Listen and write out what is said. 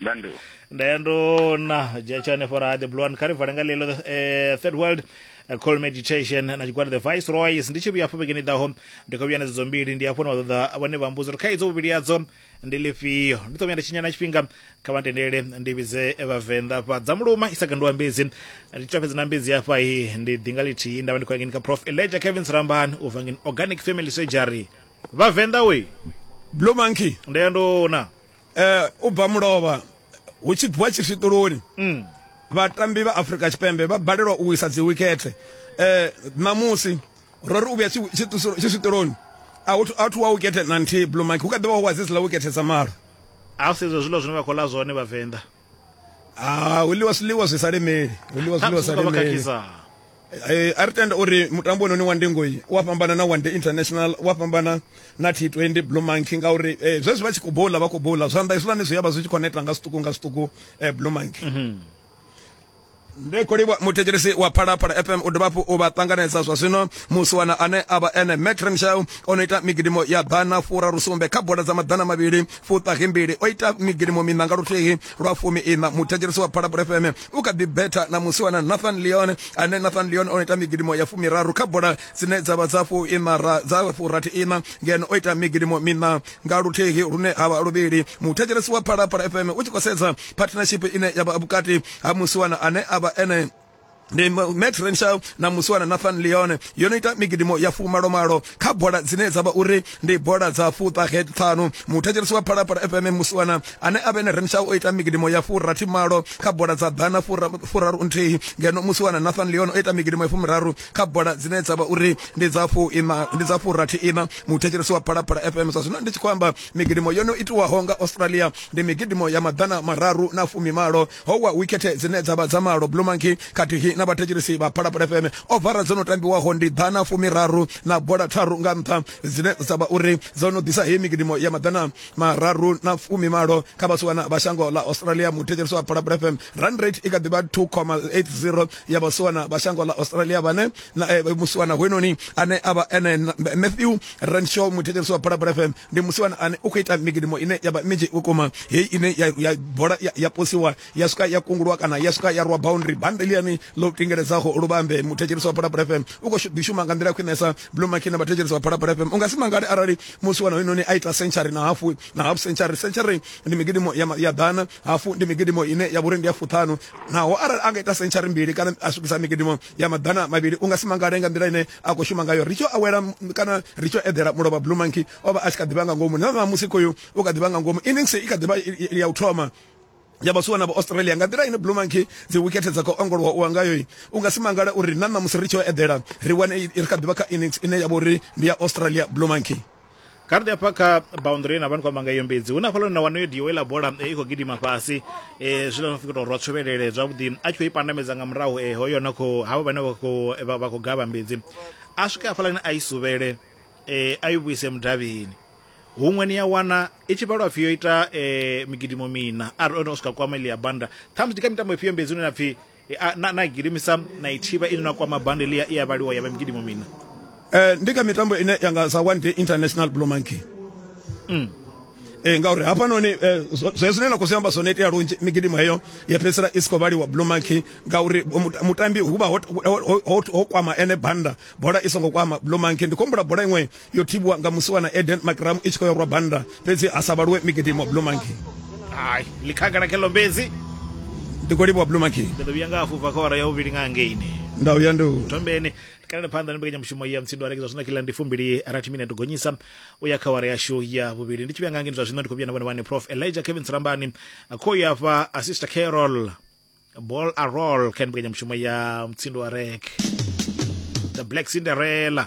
Ndandu. ndayando na jachane fora the blue one kari vharenga lelo eh, third world eh, call meditation na tshigwada the viceroys ndi tshi vhuya afho vhekeni ḓaho ndi khou vhuya na dzedzo mbili ndi afho na vhaṱoḓa vhane vha mbudzo uri kha idzo vhuvhili yadzo ndi lifhio ndi ṱo vhuya nda tshinyana tshifhinga kha vha tendele ndi vhidze vhavenḓa fha dza muluma i sa gandiwa mbedzi ndi twa fhedzi na mbedzi hafha i ndi ḓinga lithihi nda vha ndi khou yangeni kha prof elijah kevin srambani u vangeni organic family surgery vhavenḓa we Blue monkey. ndayandona eh u bva mulovha hu tshi bviwa tshifhiṱuloni mm. vhatambi vha Afrika Tshipembe vha balelwa u wisa dzi wicket eh namusi ro ri u vhuya tshifhiṱuloni a hu a thu wa wicket na nthihi blue mike hu kha ḓivha hu wa dzi dzi la wicket dza malo a u sedza zwiḽa zwine vha khou ḽa zwone vhavenḓa ah hu ḽiwa zwiḽiwa zwi sa lemeli hu ḽiwa zwiḽiwa zwi sa lemeli eh, a ri tenda uri mutambo ononi wa ndingoi u a fhambana na one day international u a fhambana na t 20 blue monkey ngauri eh, zwezwi vha tshi khou bola vha khou bola zwanḓa hezwiḽani zwi ya vha zwi tshi khou neta nga zwiṱuku nga zwiṱuku eh, blue monkey mhm. Ndi khou livhuwa muthetshelesi wa Phalaphala FM u dovha hafhu u vha ṱanganedza zwa zwino musiwana ane a vha ene Mac Renshaw o no ita migidimo ya ḓana fura rusumbe kha bola dza maḓana mavhili fuṱahi mbili o ita migidimo miṋa nga luthihi lwa fumi iṋa muthetshelesi wa Phalaphala FM u kha ḓi betha na musiwana Nathan Leon ane Nathan Leon o no ita migidimo ya fumiraru kha bola dzine dza vha dza fu iṋa ra dza fu rathi iṋa ngeno o ita migidimo miṋa nga luthihi lune ha vha luvhili muthetshelesi wa Phalaphala FM u tshi khou sedza partnership ine ya vha vhukati ha musiwana ane a vha ene ndi max renshaw na musiwana nathan leone yo no ita migidimo ya fumalomalo kha bola dzine dza vha uri ndi bola dza fuṱahe ṱhanu muthetshelesi wa phalaphala fm musiwana ane a vhene renshaw o ita migidimo ya furathi malo kha bola dza ḓana furaru nthihi ngeno musiwana nathan leone o ita migidimo ya fumiraru kha bola dzine dza vha uri ndi dza fuina ndi dza furathi ina muthetshelesi wa phalaphala fm sa zwino ndi tshi khou amba migidimo yo no itiwaho nga australia ndi migidimo ya maḓana mararu na fumimalo ho wa wikhethe dzine dza vha dza malo blue monkey khathihi na vhathetshelisi vha phalaphala fm ovara dzo no tambiwaho ndi ḓana fumiraru na bola tharu nga nṱha dzine dza vha uri dzo no ḓisa heyi migidimo ya maḓana mararu na fumimalo kha vhasiwana vha shango ḽa australia muthetshelisi wa phalaphala fm run rate i kha ḓivha 2,80 ya vhasiwana vha shango ḽa australia vhane na eh, musiwana hwenoni ane avha ene Matthew Renshaw muthetshelesi wa Phalaphala FM ndi musiwana ane u khou ita migidimo ine ya vha minzhi vhukuma heyi ine ya, ya bola ya, ya posiwa ya swika ya kungulwa kana ya swika ya rwa boundary bande liani ḽo tingeledzaho luvambe muthetshelesi wa Phalaphala FM u khou ḓi shuma nga nḓila khwinesa Blue Maki na vhathetshelesi wa Phalaphala FM u nga si mangale arali musiwana hwenoni a ita century na hafu na half century century ndi migidimo ya, ya ḓana hafu ndi migidimo ine ya vhuri ndi ya fuṱhanu naho arali a nga ita century mbili kana a swikisa migidimo ya maḓana mavhili u nga si mangale nga nḓila ine a khou shuma ngayo ri tshi awela kana ri tshi eḓela mulovha blue monkey o vha a tshi kha ḓivha nga ngomu na ṋamusi khoyu u kha ḓivha nga ngomu innings i kha ḓivha ya u thoma ya vhasuwa na vha-australia nga nḓila ine blue monkey dzi wikethe dza khou ongolowa u angayo u nga si mangale uri na ṋamusi ri tshi o eḓela ri wane ri kha ḓivha kha innings ine ya vha uri ndi ya australia blue monkey kha ri hafha kha boundary na vhani kwamba nga iyo mbedzi hu na hafhaḽa na wanoyo dio iḽa bola eh, i khou gidima fhasi um eh, zwiḽa no fika tou rwa tshovhelele zwavhuḓi a tshi khou i pandamedza nga murahu um hoyo na khou havho vhane vha khou gavha mbedzi a swike hafhaḽani a i suvhele um a i vhuise mudavhini huṅwe ni ya wana i tshi vhalwa pfhi yo ita um migidimo mina arali o no swika kwama iḽi ya banda ṱhamusi ndi kha mitambo ifhio mbedzi une na pfhi E, a, na, na gidimisa na ithiba ine na kwama bande lia iya vhaliwa ya vha migidimo mina eh, ndi kha mitambo ine ya nga sa one day international blue monkey mm. eh, ngauri hafhanoni eh, zwe zwine na khou zwi amba zwone itea lunzhi migidimo heyo ya fhedzisela i si khou vhaliwa blue monkey ngauri mutambi hu vha ho kwama ene banda bola i songo kwama blue monkey ndi khombula bola iṅwe yo thibwa nga musiwana eden makramu i tshi khou yorwa banda fhedzi ha sa vhaluwe migidimo blue monkey hai likhagala kheḽo mbedzi ndi khou livhuwa blue monkey ndi ḓo vhuya nga hafhu bva kha wara ya vhuvhili nga ngeini nda uya ndi thombeni tikalele phanḓa ni mbekanyamushumo ya mutsindo arekedzwa zwino kila ndi fumbili rathi mine to gonyisa u ya kha wara yashu ya vhuvhili ndi tshi vhuya nga ngeni zwa zwino ndi khou vhuya na vhone vhane prof elijah kevin sirambani khou ya fha a sister carol ball a roll kha mbekanyamushumo ya mutsindo wa rek the black cinderella